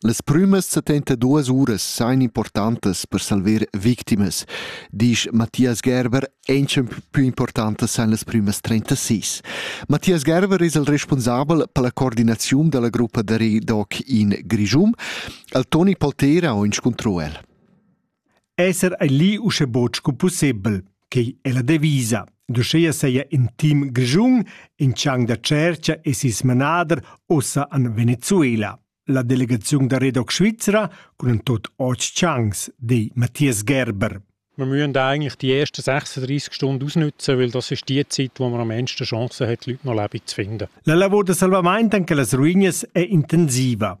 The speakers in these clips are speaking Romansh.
Las prümas settentaduos uras sajan importantas per salver victimas, disch Matthias Gerber. Auncha plü importantas san las prümas 36. Matthias Gerber es il responsabel per la coordinaziun da la gruppa da redoc in Grischun. El Toni Paltera ho inscuntro el. Esser ei lì uschè buc sco pussebel, quei è la devisa. D'uscheia seia in team grischun in chang da tscherca e sis manader ossa an Venezuela. La delegaziun da Redoc Svizra cun en tot otg changs, di Matthias Gerber. Wir müssen da eigentlich die ersten 36 Stunden ausnutzen, weil das ist die Zeit, wo man am meisten Chancen hat, Leute noch leben zu finden. La lavor da salvament en quellas ruinas è intensiva.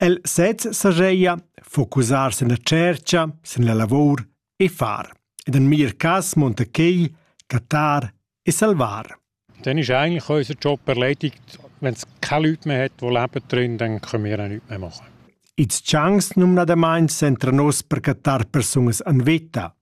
El sez sajeia focusar sen la tschercha, sen la lavour e far. Ed en mir cas monta quei catar e salvar. Dann ist eigentlich unser Job erledigt. Wenn es keine Leute mehr hat, die leben drin, dann können wir auch nichts mehr machen. Its chance numnadamain sentra nos per catar persungas an veta.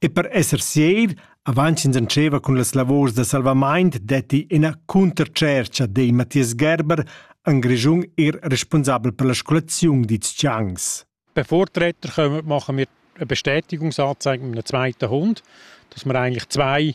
E per esser sieir, avant ch'ins entscheva cun las lavurs da salvamaint detti ina cuntertschercha dei Matthias Gerber en Grischun er responsabel per la scolaziun dits Changs. Per Vortreter machen wir eine Bestätigungsanzeige mit einem zweiten Hund, dass wir eigentlich zwei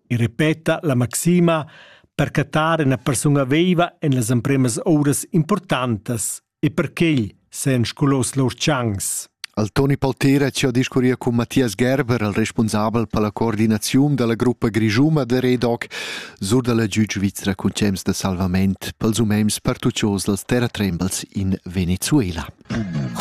e repeta la maxima per cattar ina persuna veiva en las empremas ouras importantas e per ch'el sean scolos lur tschancs. Al Toni Paltera ci ha discurria cun Mathias Gerber, il responsabel per la coordinaziun della gruppa Grigiuma de Redoc, sur dalla giug svizra cun cems de salvament pels umens pertuccios dals terratrembels in Venezuela.